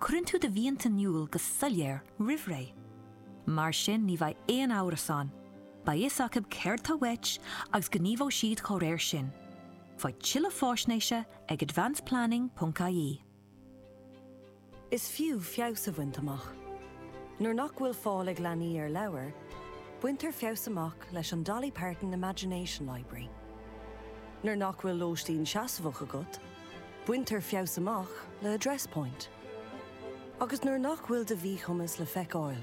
cuireann tú do mhianta in iúl go soiléir roimhré. Mar sin ní bheidh aon amhras ann, beidh fhios acu céard tá uait agus gníomhóidh siad dá réir sin. Faigh tuilleadh faisnéise ag advanceplanning.ie. Is fiú feabhas a bhaint amach. Nuair nach bhfuil fáil ag leanaí ar leabhair, baintear feabhas amach leis an Dolly Parton Imagination Library. Nuair nach bhfuil lóistín seasmhach agat, Baintear feabhas amach le Address Point agus nuair nach bhfuil do mhíchumas le feiceáil,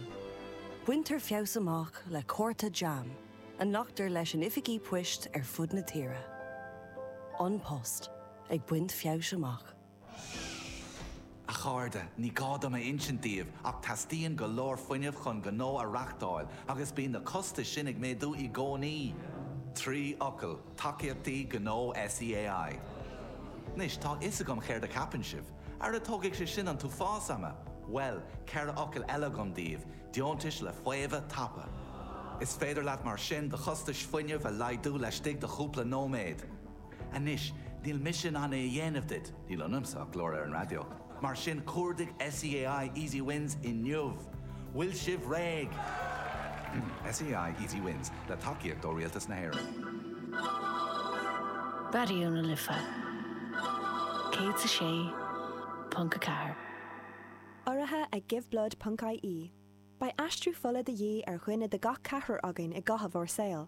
baintear feabhas amach le cárta JAM a nglactar leis in oifigí poist ar fud na tíre. An Post ag baint feabhais amach. A chairde, ní gá dom a insint daoibh ach teastaíonn go leor fuinnimh chun gnó a reáchtáil agus bíonn na costais sin ag méadú i gcónaí! Trí fhocal, Tacaíochtaí Gnó SEAI. Anois, tá a fhios agam céard a cheapann sibh. Ara tógfaidh sé sin an t-uafás ama! Bhuel, ceithre fhocal eile agam daoibh, Deontais le Faomhadh Tapa. Is féidir leat mar sin do chostais fuinnimh a laghdú laistigh de chúpla nóiméad. Anois, níl mise in ann é a dhéanamh duit, níl ionamsa ach glór ar an raidió, mar sin cuardaigh SEAI Easy Wins inniu! Bhfuil sibh réidh? SEAI Easy Wins, le tacaíocht ó Rialtas na hÉireann. Raidió na Life 106.4. Urraithe ag GiveBlood ponc-IE, beidh aistriú fola de dhíth ar dhuine as gach ceathrar againn i gcaitheamh ár saoil.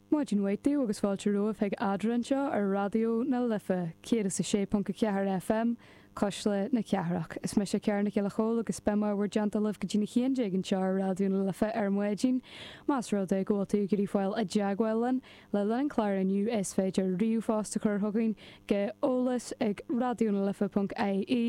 Maidin mhaith daoibh agus fáilte romhaibh chuig Adhmhaidin anseo ar Raidió na Life 106.4 FM, Cuisle na Cathrach. Is mise Ciara Nic Giolla Chomhaill agus beidh mé i bhur dteannta libh go dtí na haon déag anseo ar Raidió na Life ar maidin. Más rud é go bhfuil tú ag iarraidh fáil i dteagmháil linn le linn an chláir inniu is féidir ríomhphost a chur chugainn go eolas ag radionalife.ie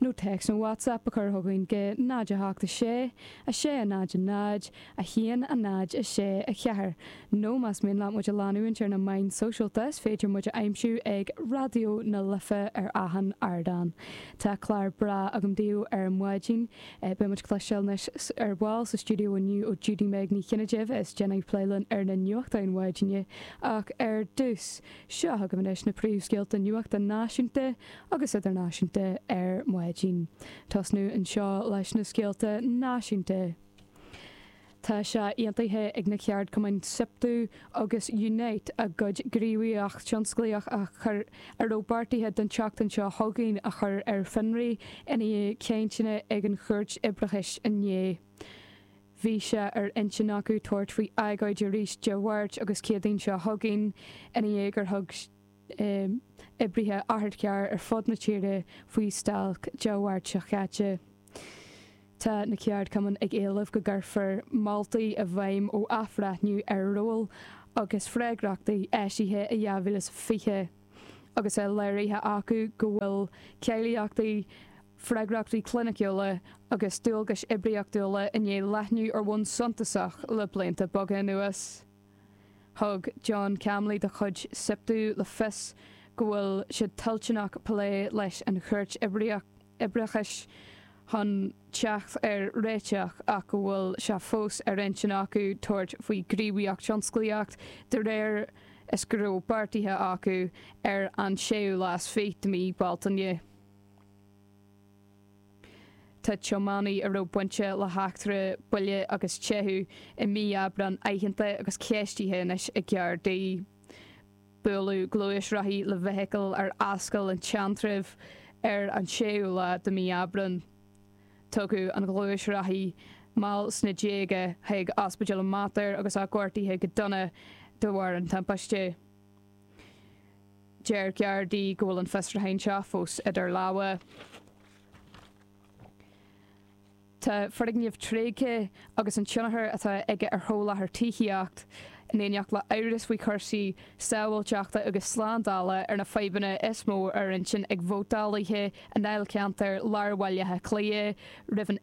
nó téacs nó WhatsApp a chur chugainn go 0 8 6 6 0 0 1, 0, 6, 4, nó más mian leat muid a leanúint ar na meáin shóisialta is féidir muid a aimsiú ag Raidió na Life ar achan ardán. Tá clár breá agam daoibh ar maidin. Beidh muid ag cloisteáil anois ar ball sa stiúideo inniu ó Judy Meg Ní Chinnéide a dhéanfaidh plé linn ar na nuachtáin maidine ach ar dtús, seo chugaibh anois na príomhscéalta nuachta náisiúnta agus idirnáisiúnta ar maidin. Tosnú anseo leis na scéalta náisiúnta. Tá sé aontaithe ag na ceardchumainn Siptu agus Unite a gcuid gníomhaíocht thionsclaíoch a chur a raibh beartaithe don tseachtain seo chugainn a chur ar fionraí i ndiaidh cainteanna ag an gCúirt Oibreachais inné. Bhí sé ar intinn acu tabhairt faoi agóid arís Dé Máirt agus Céadaoin seo chugainn i ndiaidh gur thug oibrithe otharchairr ar fud na tíre faoi stailc Dé Máirt seo caite. Tá na ceardchumainn ag éileamh go gcuirfear moltaí i bhfeidhm ó athbhreithniú ar róil agus freagrachtaí eisithe i 2020 agus é léirithe acu go bhfuil cáilíochtaí, freagrachtaí cliniciúla agus dualgais oibríochtúla i ndiaidh leathnú ar bhonn suntasach le blianta beaga anuas. Thug John Camley de chuid Siptu le fios go bhfuil siad toilteanach plé leis an Chúirt Oibreachais chun teacht ar réiteach ach go bhfuil sé fós ar intinn acu tabhairt faoi ghníomhaíocht tionsclaíoch de réir is go raibh beartaithe acu ar an séú lá is fiche de mhí Bealtaine. Tá tiománaí a raibh bainte le heachtra buille agus teitheadh i mí Aibreáin aitheanta agus ceistithe anois ag Gardaí. Buaileadh gluaisrothaí le feithicil ar Ascaill an tSeantraibh ar an séú lá de mhí Aibreáin. Tugadh an gluaisrothaí, mall sna déaga, chuig Ospidéal an Mater agus é gortaithe go dona de bharr an timpiste. Deir Gardaí go bhfuil an fiosrúchán seo fós idir lámha. Tá foirgneamh tréigthe agus an tionchar atá aige ar sholáthar tithíocht, in éineacht le amhras faoi chúrsaí sábháilteachta agus slándála, ar na fadhbanna is mó ar intinn ag vótálaithe i ndáilcheantar lár Bhaile Átha Cliath roimh an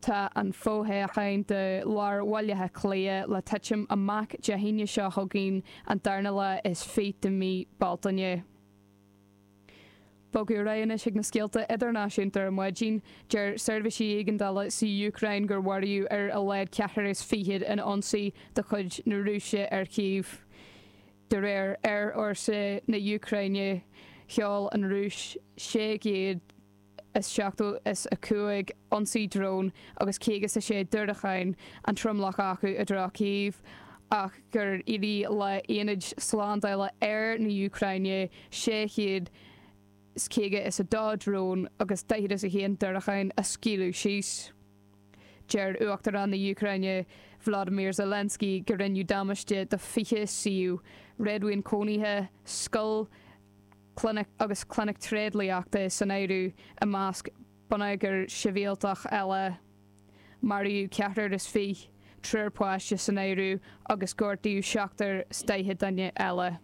Tá an fo-thoghchán do lár Bhaile Átha Cliath le titim amach Dé hAoine seo chugainn, an darna lá is fiche de mhí Bealtaine. Bogadh ar aghaidh anois ag na scéalta idirnáisiúnta ar maidin. Deir seirbhísí éigeandála sa Úcráin gur maraíodh ar a laghad ceathrar is fiche in ionsaí de chuid na Rúise ar Chív. De réir aerfhórsa na Úcráine, sheol an Rúis sé chéad is seachtó is a cúig ionsaí drón agus caoga is a sé diúracáin, an tromlach acu i dtreo Kyiv, ach gur éirigh le haonaid slándála aeir na Úcráine sé chéad is caoga is a dó drón agus daichead is a haon diúracán a scaoileadh síos. Deir Uachtarán na Úcráine Volodymyr Zelensky go rinneadh damáiste do 20 suíomh réadmhaoin cónaithe, scoil, agus clinic tréidliachta san áireamh i measc bonneagar sibhialtach eile. Maraíodh ceathrar is fiche, triúr páiste san áireamh, agus gortaíodh seachtar is daichead duine eile.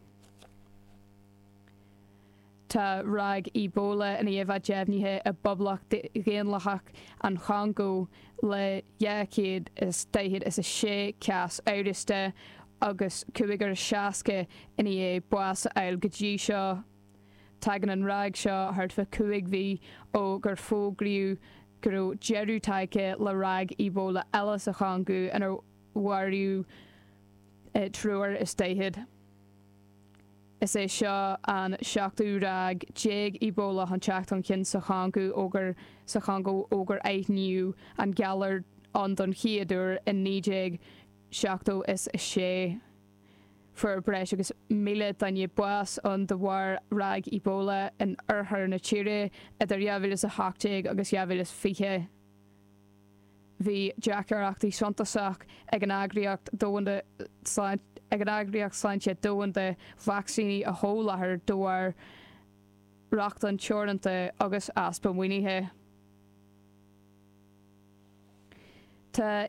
Tá ráig Ebola nua deimhnithe i bPoblacht Dhaonlathach an Chongó le dhá chéad is daichead is a sé cás amhrasta Agus cúigear is seasca i ndiaidh bás a fháil go dtí seo, tagann an ráig seo thart fá chúig mhí ó gur fógraíodh go raibh deireadh tagtha le ráig Ebola eile sa Chongó inar mharaíodh triúr is daichead. Is é seo an seachtú ráig déag Ebola chun teacht chun cinn sa Chongó ó gur sa Chongó ó gur aithníodh an galar ann don chéad uair in 19. 76. Fuair breis agus míle duine bás ann de bharr ráig Ebola in oirthear na tíre idir 2018 agus 2020. Bhí deacrachtaí suntasach ag an Eagraíocht Sláinte Domhanda vacsaíní a sholáthar de bharr rochtain teoranta agus easpa maoinithe. Tá.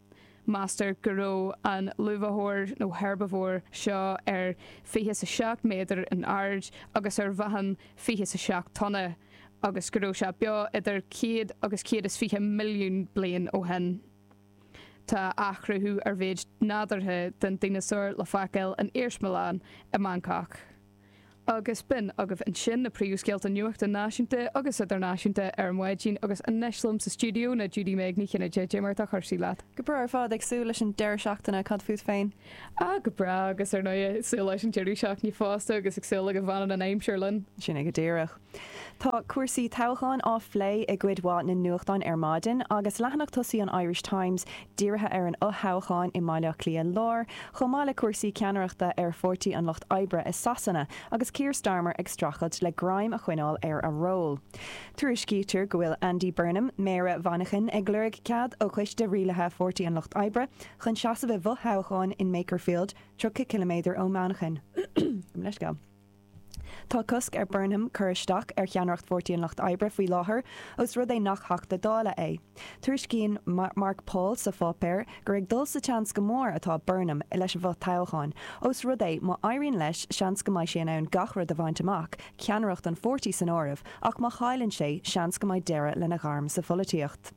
Meastar go raibh an luibhiteoir nó herbivore seo ar fiche is a seacht méadar in airde agus ar mheáchan fiche is a seacht tonna agus go raibh sé beo idir céad agus céad is fiche milliún bliain ó shin. Tá athchruthú ar mhéid nádúrtha den dineasár le feiceáil in iarsmalann i mBangcác. agus b'in agaibh ansin na príomhscéalta nuachta náisiúnta agus idirnáisiúnta ar maidin agus anois liom sa stiúideo ná Judy Meg Ní Chinnéide, cad é mar atá cúrsaí leat. Go breá ar fad, ag súil leis an deireadh seachtaine, cad fút féin? Ah go breá agus ar ndóigh ag súil leis an deireadh seachtaine fosta agus ag súil le go bhfanann an aimsir linn. Sin é go díreach. Tá cúrsaí toghcháin á phlé i gcuid mhaith na nuachtán ar maidin agus leathanach tosaigh an Irish Times dírithe ar an fhothoghchán i mBaile Átha Cliath Láir chomh maith le cúrsaí ceannaireachta ar Pháirtí an Lucht Oibre i Sasana agus Keir Starmer ag streachailt le greim a choinneáil ar a ról. Tuairiscítear go bhfuil Andy Burnham, méara Mhanchain, ag lorg cead ó choiste rialaithe Pháirtí an Lucht Oibre chun seasamh i bhfothoghchán in Makerfield, 30 ciliméadar ó Mhanchain. Tá cosc ar Burnham cur isteach ar cheannaireacht Pháirtí an Lucht Oibre faoi láthair, ós rud é nach Theachta Dála é. Tuairiscíonn Mark Paul sa pháipéar gur ag dul sa tseans go mór atá Burnham leis an bhfothoghchán, ós rud é, má éiríonn leis, seans go mbeidh sé in ann gach rud a bhaint amach, ceannaireacht an pháirtí san áireamh, ach má chailleann sé, seans go mbeidh deireadh lena ghairm sa pholaitíocht.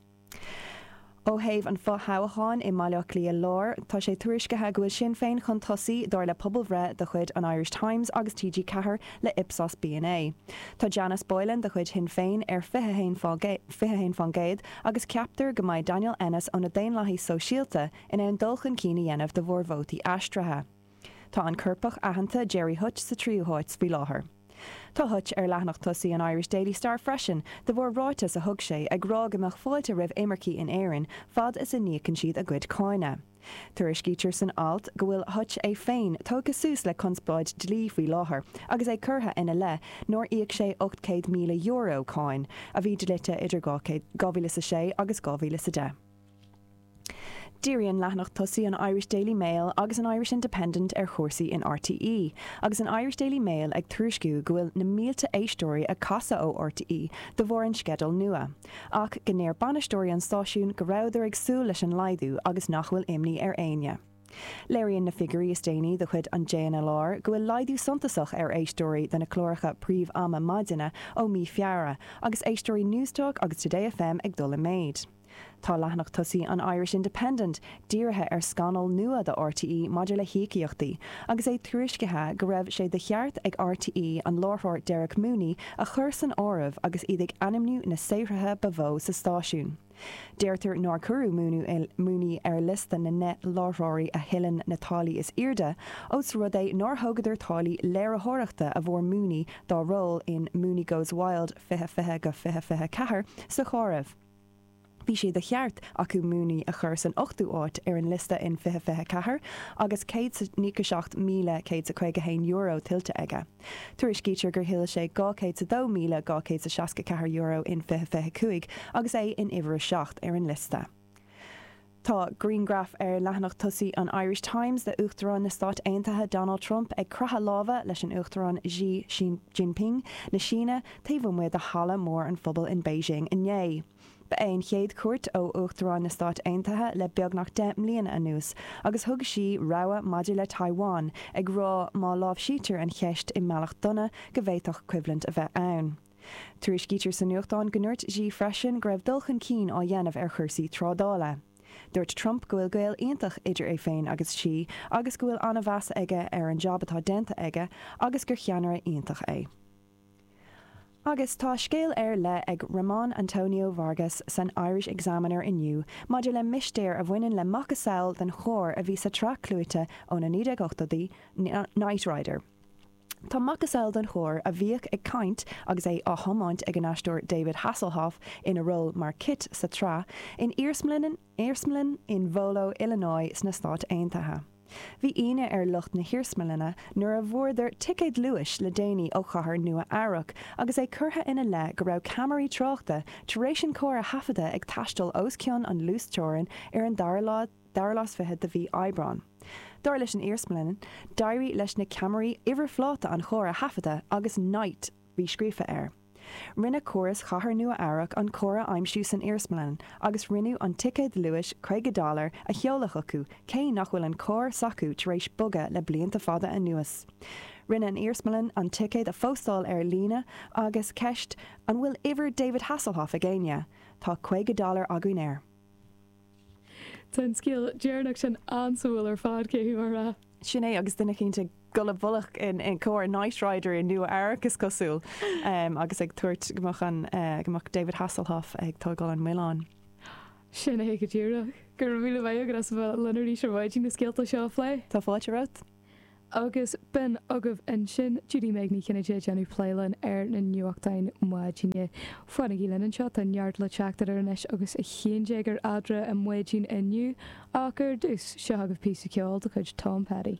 Ó thaobh an fothoghcháin i mBaile Átha Cliath Láir, tá sé tuairiscithe go bhfuil Sinn Féin chun tosaigh, dar le pobalbhreith de chuid an Irish Times agus TG4 le Ipsos B&A. Tá Janice Boylan de chuid Shinn Féin ar 21% agus ceaptar go mbeidh Daniel Ennis ó na Daonlathaigh Sóisialta in ann dul chun cinn a dhéanamh de bharr vótaí aistrithe. Tá an coirpeach aitheanta Gerry Hutch sa tríú háit faoi láthair. Tá Hutch ar leathanach tosaigh an Irish Daily Star freisin de bharr ráiteas a thug sé ag rá go mbeadh fáilte roimh imircigh in Éirinn fad is a n-íocann siad a gcuid cáine. Tuairiscítear san alt go bhfuil Hutch é féin tógtha suas le conspóid dlí faoi láthair agus é curtha ina leith nár íoc sé €800,000, cáin a bhí dlite idir 2000, 2006 agus 2010. Díríonn leathanach tosaigh an Irish Daily Mail agus an Irish Independent ar chúrsaí in RTÉ, agus an Irish Daily Mail ag tuairisciú go bhfuil na mílte éisteoirí ag casadh ó RTÉ de bharr an sceidil nua, ach go ndeir bainisteoirí an stáisiúin go rabhadar ag súil leis an laghdú agus nach bhfuil imní ar éinne. Léiríonn na figiúirí is déanaí de chuid an JNLR go bhfuil laghdú suntasach ar éisteoirí do na cláracha príomh-ama maidine ó mí Feabhra, agus éisteoirí Newstalk agus Today FM ag dul i méid. Tá leathanach tosaigh an Irish Independent dírithe ar scannal nua do RTÉ maidir le híocaíochtaí agus é tuairiscithe go raibh sé de cheart ag RTÉ an láithreoir Derek Mooney a chur san áireamh agus iad ag ainmniú na saothraithe ba mhó sa stáisiún. Deirtear nár cuireadh Mooney ar liosta na ndeich láithreoirí a thuilleann na táillí is airde ós rud é nár thógadar táillí léiritheoireachta a bhfuair Mooney dá ról in Mooney Goes Wild 2020 go 2024 sa chomhaireamh. Bhí sé de cheart acu Mooney a chur san ochtú háit ar an liosta in 2024 agus céad is a nócha seacht míle céad is a caoga haon euro tuillte aige. Tuairiscítear gur thuill sé dhá chéad is a dó míle dhá chéad is a seasca ceathair euro in 2025 agus é in uimhir a seacht ar an liosta. Tá grianghraf ar leathanach tosaigh an Irish Times de Uachtarán na Stáit Aontaithe Donald Trump ag croitheadh láimhe leis an Uachtarán Xi Jinping na Síne taobh amuigh de Halla Mór an Phobail in Beijing inné. Ba é an chéad chuairt ó Uachtarán na Stáit Aontaithe le beagnach deich mbliana anuas agus thug Xi rabhadh maidir le Taiwan, ag rá má láimhsítear an cheist i mbealach dona go bhféadfadh coimhlint a bheith ann. Tuairiscítear sa nuachtán go ndúirt Xi freisin go raibh dul chun cinn á dhéanamh ar chúrsaí trádála. Dúirt Trump go bhfuil gaol iontach idir é féin agus Xi agus go bhfuil an-mheas aige ar an jab atá déanta aige agus gur cheannaire iontach é. Agus tá scéal ar leith ag Ramon Antonio Vargas san Irish Examiner inniu maidir le mistéir a bhaineann le macasamhail den charr a bhí sa tsraith clúite ó na 1980idí, Knight Rider. Tá macasamhail den charr a bhíodh ag caint agus é á thiomáint ag an aisteoir David Hasselhoff ina ról mar KITT sa tsraith in iarsmalann in Volo, Illinois sna Stáit Aontaithe. Bhí ionadh ar lucht na hiarsmalainne nuair a bhfuaireadar ticéad luais le déanaí ó chathair Nua-Eabhrac agus é curtha ina leith go raibh ceamaraí tráchta tar éis an carr a thaifeadadh ag taisteal os cionn an luasteorainn ar an dara lá dara lá is fiche de mhí Aibreáin. Dar leis an iarsmalann, d'éirigh leis na ceamaraí uimhirphláta an chairr a thaifeadadh agus 'Night' ríscríofa air. Rinne córas Chathair Nua-Eabhrac an carr a aimsiú san iarsmalann agus rinneadh an ticéad luais caoga dollar a sheoladh chucu, cé nach bhfuil an carr s'acu tar éis bogadh le blianta fada anuas. Rinne an iarsmalann an ticéad a phóstáil ar líne agus ceist, An bhfuil uimhir David Hasselhoff ag éinne? Tá caoga dollar againn air. Tá an scéal deireanach sin an-suimiúil ar fad, cé hí, mar a. Sin é, agus duine éicint ag dul i bhfolach i gcomhair Knight Rider i Nua Eabhrac, is cosúil, agus ag tabhairt go mbeadh an, eh, go mbeadh David Hasselhoff ag tógáil an mhilleáin. Sin é go díreach. Go raibh míle maith agat as a bheith linn arís ar maidin na scéalta seo a phlé. Tá fáilte romhat. Agus b'in agaibh ansin Judy-Meg Ní Chinnéide ag déanamh plé linn ar na nuachtáin maidine. Fanaigí linn anseo, tá neart le teacht idir anois agus a haon déag ar Adhmhaidin inniu, ach ar dtús, seo chugaibh píosa ceoil de chuid Tom Petty.